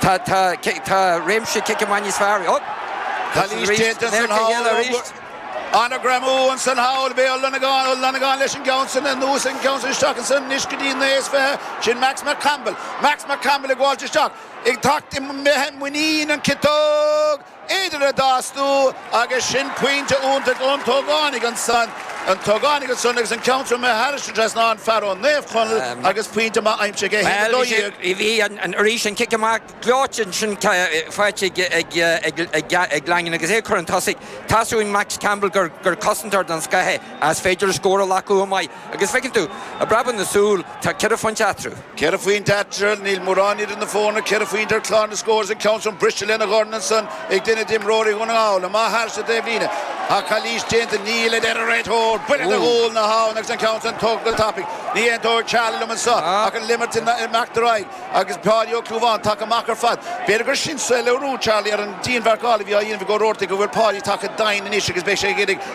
Tá tá tá réimse cice maith níos fearr. Ó! Calaois déanta ansan thall arís. Ana-ghreamú ansan thall. Micheál Ó Longáin Ó Longáin leis an gceann san anuas an ceann san isteach ansan anois go dtí naoi is fiche. Sin Max Mac Campbell. Max Mac Campbell ag fáilt isteach. Ag teacht an mbeidh muinín an ciotóg. Idir a dá astú agus sin pointe iontach ón t-ógánaigh ansan, an t-ógánaigh ansan agus an ceann troma thar an trasnán, an fear ó Naomh Conaill agus pointe maith aimsithe aige, 1-12. Bhuel, bhí sé, arís an cic amach gleoite ansin faighte ag Langan agus é ag cur chun tosaigh. Taispeánann Max Campbell gur cosantóir den scoth é, a's b'féidir scór a ghlacadh chomh maith. Agus feiceann tú, i bpreabadh na súl, tá ceithre phointe eatarthu. Ceithre phointe eatarthu, níl mórán idir na foirne, ceithre phointe ar chlár na scór is an ceann sin briste lena dhorn ansan ag duine d'imreoirí Dhún na nGall. Amach thairis sa taobhlíne tá calaois déanta, níl a deir an réiteoir. Buille do ghualainn a bhí ann agus an ceann sin tógtha go tapaidh. Ní aontóidh Charlie liom anso ach an imirt ag imeacht ar aghaidh agus Páidí Ó Clúmháin tagtha amach ar fad. B'fhéidir gur sin léiriú Charlie ar an dianmharcáil a bhí á dhéanamh ag Ó Robhartaigh go bhfuil Páidí tagtha chomh domhain anois agus beidh sé ag iarraidh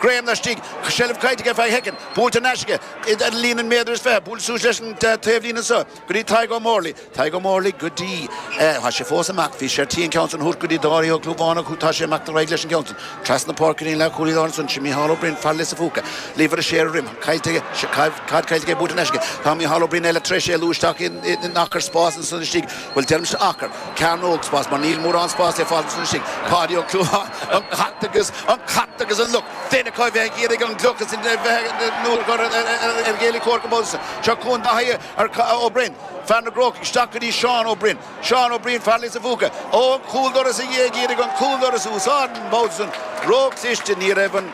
greim laistigh, seilbh caillte aige feadh shoicind, buailte in aisce ag an líne méadar is fiche, buailte suas leis an taobh líne anso go dtí Tadhg Ó Morlaí, Tadhg Ó Morlaí go dtí, tá sé fós amach, bhí sé ar tí an ceann san a thabhairt go dtí Dáithí Ó Clúmháin ach tá sé ag imeacht ar aghaidh leis an gceann san, trasna páirce ar an leathchúlaí láir ansan, sin Micheál Ó Braoin, fear Lios a' Phúca, Lever a sé ar a dhroim, caillte aige, caid caillte aige buailte in aisce, tá Micheál Ó Braoin eile tar éis éalú isteach in acra spáis ansan istigh, Bhuel, deirimse acra, cearnóg spáis, mar níl mórán spáis le fáil ansin, istigh. Páidí Ó Clúmháin, An cat agus an cat agus an luch. Féin acu a bheith ag iarraidh an gloch is a bheith nó a chur ar a chéile ag comhartha an babhta san. Seo chugainn Dáithí Ó Broin, fear na gCrócach, isteach go dtí Seán Ó Briain. Seán Ó Briain, fear Lios a Phúca. Ó, an cúldoras a dhé ag iarraidh an cúldoras a úsáid, an babhta san, ró-chliste, ní raibh an,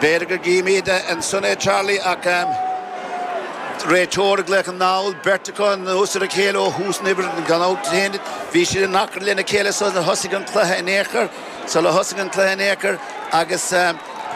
B'fhéidir go gcífimíd ansan é Charlie ach réiteoir i gcluiche na nGall, beirt acu anuas ar a chéile ó thús na himeartha gan olc ar aon duine. Bhí siad in achrann lena chéile sular thosaigh an cluiche in aon chor, sular thosaigh an cluiche in aon chor agus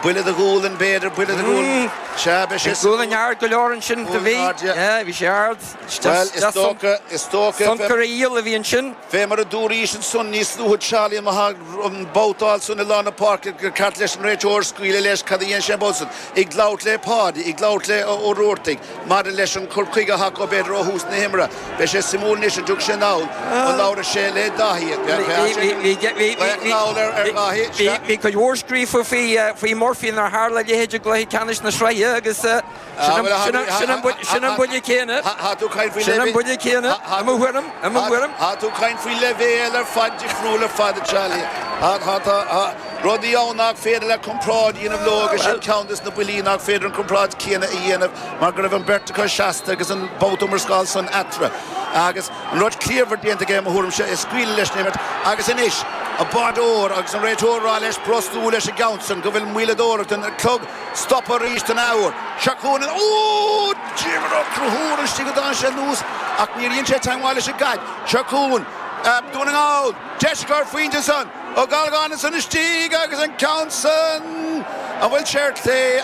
buille do ghualainn b'fhéidir, buille do ghualainn. Sea, b'é sin. Gualainn ard go leor ansin do bhí. Gualainn ard, ya. Ya, bhí sé ard. Bhuel, is dócha, is dócha. Soncaraíl a bhí ansin. Fé mar a dúraís ansan níos luaithe Charlie an Mhagh an babhtáil san i lár na páirce gur cheart leis an réiteoir scaoileadh leis cad a dhéan sé an babhta san. Ag labhairt le Páidí, ag labhairt le Ó Robhartaigh maidir leis an cur chuige atá acu b'fhéidir ó thús na himeartha. Beidh sé suimiúil anois an dtug sé an feall a labhair sé le Daithí. Bheadh an feall ar Dhaithí, sea. Bhí cuid mhór scríofa faoi Murphy nár tharla a leithéid i gcluiche ceannais na sraithe agus, Sin an buille céanna, sin an buille céanna, i mo thuairim, i mo thuairim. Tá tú ag caint faoi leibhéal ar fad difriúil ar fad, a Charlie. Tá rudaí ann nach féidir leat comparáid a dhéanamh leo agus sin ceann de na buillí nach féidir an comparáid céanna a dhéanamh mar go raibh an bheirt acu seasta agus an babhta iomrascála san eatarthu agus an rud ciallmhar déanta aige, i mo thuairimse, ag scaoileadh leis an imirt agus anois an báireoir agus an réiteoir ag rá leis brostú leis an gceann sin go bhfuil maoileadóireacht an chloig Stopadh arís an athuair. Seo chugainn ó! D'imigh Conchúr ann istigh a d'fhan sé anuas ach níor dhein sé teangmháil leis an gcaid. Seo chugainn Dún na nGall. Deis ar chor pointe ansan. Ó Gallchóir ansan istigh agus an ceann san. An bhfuil sé ar chlé?